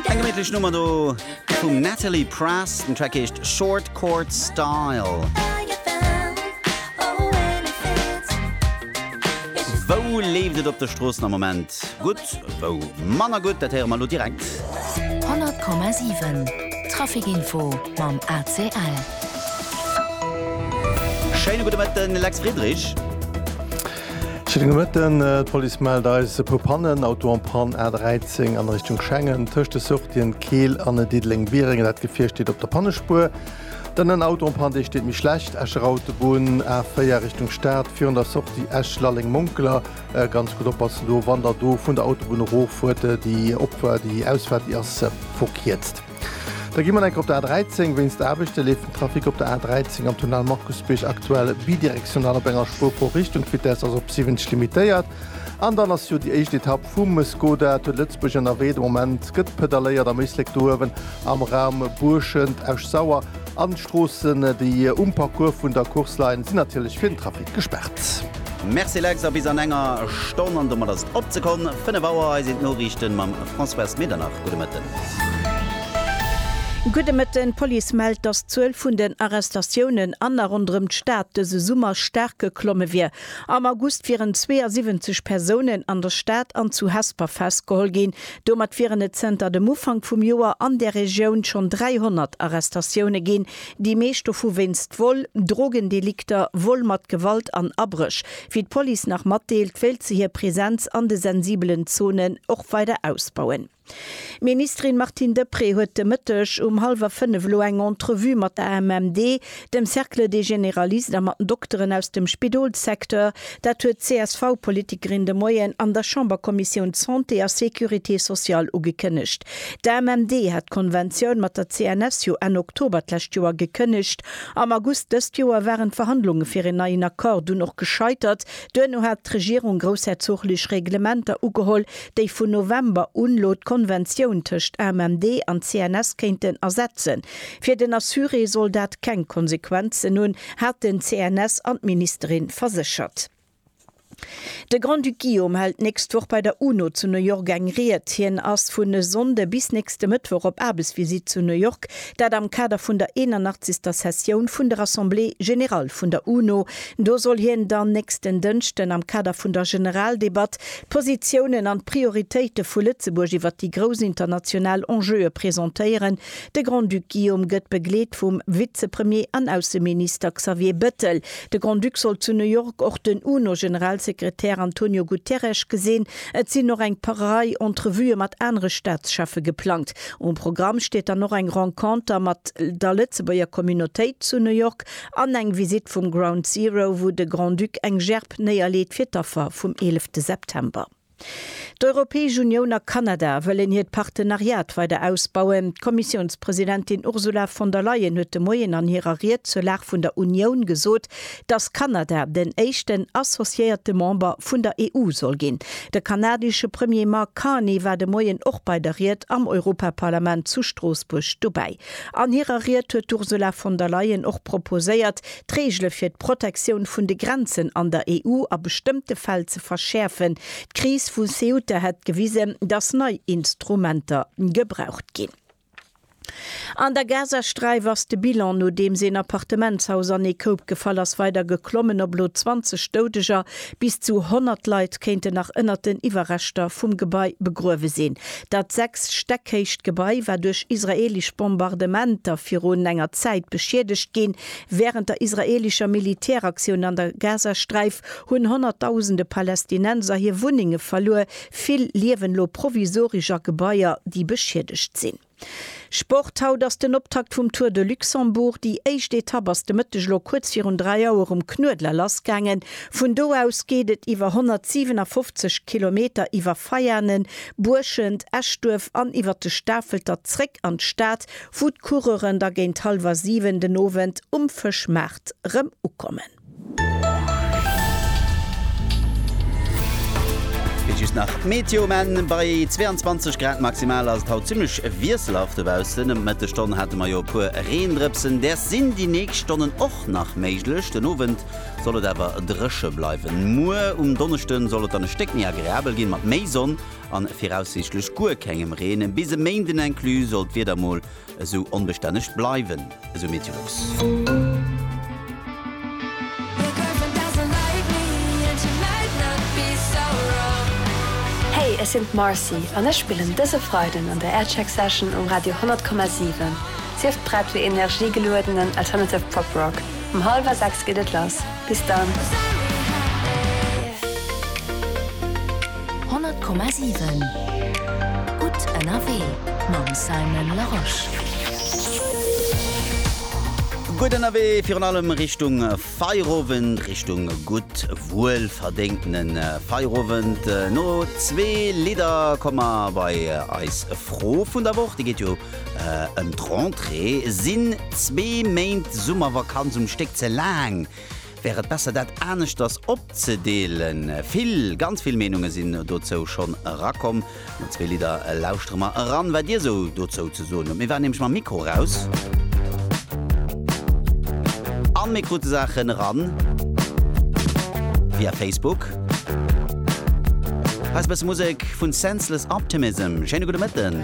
Eng geméitlech Nummer do vum Natalie Prass, den Track heescht Short Court Style. Wou leeft et op de Stroossen am Moment gutt, wou manner gutt, dat héiere mer elo direkt. 100,7 Trafic-Info mam ACL. Schéine gudde Mëtten, Lex Friedrich. Schëdden de Mëtten, D'Police mellt eis e puer Pannen, Auto en Panne A 13 an Richtung Schengen, tëscht de Sortien Keel an Diddeleng-Biereng, dat Gefier steet op der Pannespuer. Dann en Auto en Panne, dee steet méi schlecht, Escher Autobunn A 4 Richtung Stad, virun der Sortie Esch-Lalleng-Monkeler. Ganz gutt oppassen do, wann der do vun der Autobunn eroffuert, déi Opfuert, déi Ausfaart, déi ass verkierzt. Da gi mer enker op der A13. Wéinst Aarbechte leeft den Trafic op der A13 am Tunnel Markusbierg aktuell bidirektional op enger Spuer pro Richtung. D'Vitess ass op 70 limitéiert. An dann ass jo déi éischt Etapp vum Skoda Tour de Lëtzebuerg ënnerwee. De Moment gëtt pedaléiert am Éislek do uewen am Raum Buurschent, Esch-Sauer. An d'Stroossen, déi um Parcours vun der Course leien, sinn natierlech fir den Trafic gespaart. Merci Lex, a bis an enger Stonn, an domat ass et opzekomm, 5 Auer, hei sinn d'Noriichten mam Françoise Medernach. Gudde Mëtten. Gudde Mëtten. D'Police mellt, dass d'Zuel vun den Arrestatiounen an a ronderëm d'Stad dëse Summer staark geklomme wier. Am August wieren 72 Persounen an der Stad an zu Hesper festgeholl ginn, Domat wieren et zënter dem Ufank vum Joer an där Regioun schonn 300 Arrestatioune ginn, déi meescht dovu wéinst Vol, Drogendelikter, Vol mat Gewalt an Abréch. Wéi d'Police nach matdeelt, wéilt se hir Presenz an de sensibelen Zonen och weider ausbauen. D'Ministerin Martine Deprez huet de Mëtteg um hallwer fënnef elo eng Entrevue mat der AMMD, dem Cercle des Généralistes a mat den Dokteren aus dem Spidolssecteur, dat huet d'CSV-Politikerin de Moien an der Chamberkommissioun Santé a Sécurité sociale ugekënnegt. D'AMMD hat d'Konventioun mat der CNS jo Enn Oktober d'lescht Joer gekënnegt. Am August dëst Joer waren d'Verhandlunge fir een neien Accord dunn och gescheitert. Duerno hat d'Regierung groussherzoglech Reglementer ugeholl, déi vun November un elo d'Konventioun tëscht AMMD an CNS kéinten ersetzen. Fir den Assuré soll dat keng Konsequenzen hunn, hat den CNS an d'Ministerin verséchert. De Grand-Duc Guillaume hält d'nächst Woch bei der UNO zu New York eng Ried. Hien ass vun e Sonnde bis nächste Mëttwoch op Aarbechtsvisitt zu New York, dat am Kader vun der 81. Sessioun vun der Assemblée générale vun der UNO. Do soll hien dann nächsten Dënschden am Kader vun der Generaldebatt d'Positiounen an d'Prioritéite vu Lëtzebuerg iwwer déi grouss international Enjeue presentéieren, De Grand-Duc Guillaume gëtt begleet vum Vizepremier an Ausseminister Xavier Bettel. De Grand-Duc soll zu New York och den UNO-Generalsekretär Antonio Guterres gesinn. Et sinn och eng Rei Entrevuë mat anere Staatscheffe geplangt. Um Programm steet dann och eng Renconter mat der Lëtzebuerger Communautéit zu New York an eng Visitt vum Ground Zero, wou de Grand-Duc eng Gerb néierleet fir d'Affer vum 11 September. D'Europäesch Unioun a Kanada wëllen hiert Partenariat weider ausbauen. D'Kommissiounspresidentin Ursula von der Leyen huet de Moien an hirer Ried zur Lag vun der Unioun gesot, datt Kanada den éischten associéierte Member vun der EU soll ginn. De kanadesche Premier Mark Carney war de Moien och bei der Ried am Europaparlament zu Stroossbuerg dobäi. An hirer Ried huet d'Ursula von der Leyen och proposéiert, d'Reegele fir d'Protektioun vun de Grenzen an der EU a bestëmmte Fäll ze verschäerfen. D'Kris vu Ceuta hätt gewisen, datt nei Instrumenter gebraucht ginn. An der Gazasträif ass de Bilan, nodeems een Appartementshaus an ee Koup gefall ass, weider geklommen op elo 20 Doudeger. Bis zu 100 Leit kéinten nach ënnert den Iwwerreschter vum Gebai begruewe sinn. Dat sechs Stäck héicht Gebai war duerch israeelesch Bombardementer virun enger Zäit beschiedegt ginn. Wärend der israelischer Militäraktioun an der Gazasträif hunn honnertdausende Palästinenser hir Wunnenge verluer. Vill liewen elo provisoresch a Gebaier, déi beschiedegt sinn. Sport, Haut ass den Optakt vum Tour de Luxembourg. Déi éischt Etapp ass de Mëtteg elo kuerz virun 3 Auer um Knuedler lassgaangen. Vun do aus geet et iwwer 157 Kilometer iwwer Veianen, Buerschent, Eschduerf an iwwer de Stafelter zréck an d'Stad, wou d'Coureuren da géint hallwer 7 den Owend um Fëschmaart rëm ukommen. Fir just nach d'Meteo, Menn, Bei 22 Grad maximal ass et haut zimmlech wiesselhaft dobaussen. Ëm d'Mëttesstonn hate mer jo e puer Reendrëpsen, däers sinn déi nächst Stonnen och nach méiglech. Den Owend soll et awer dréche bleiwen. Muer um Donneschde soll et dann e Stéck méi agreabel ginn, mat méi Sonn. a viraussiichtlech guer kengem Reen. Bis e Méinden inclus soll d'Wieder mol esou onbestänneg bleiwen, esou Meteolux. Hey, ech sinn d'Marcy an ech spillen dëse Freiden an der Aircheck Session um Radio 100,7. Sief prett fir energiegeluedenen alternative Pop Rock. Um hallwer 6 geet et lass. Bis dann! 100,7 Gutt ënnerwee mam Simon Larosche. Gutt ënnerwee virun allem Richtung Feierowend, Richtung gutt wuelverdéngtene Feierowend. No zwee Lidder komme mer bei eis Fro vun der Woch. Déi geet jo ëm d'Rentrée. Sinn zwee Méint Summervakanz um Stéck ze laang? Wär et besser dat aneschters opzedeelen? Vill, ganz vill Meenunge sinn dozou schonn erakomm. No zwee Lidder lauschtere mer eran, wat dir esou dozou ze soen hutt. Mir waren nämlech mam Mikro eraus a mir krute Saachen eran via Facebook. Hei ass e bësse Musek vun Senseless Optimism. Schéine gudde Mëtten.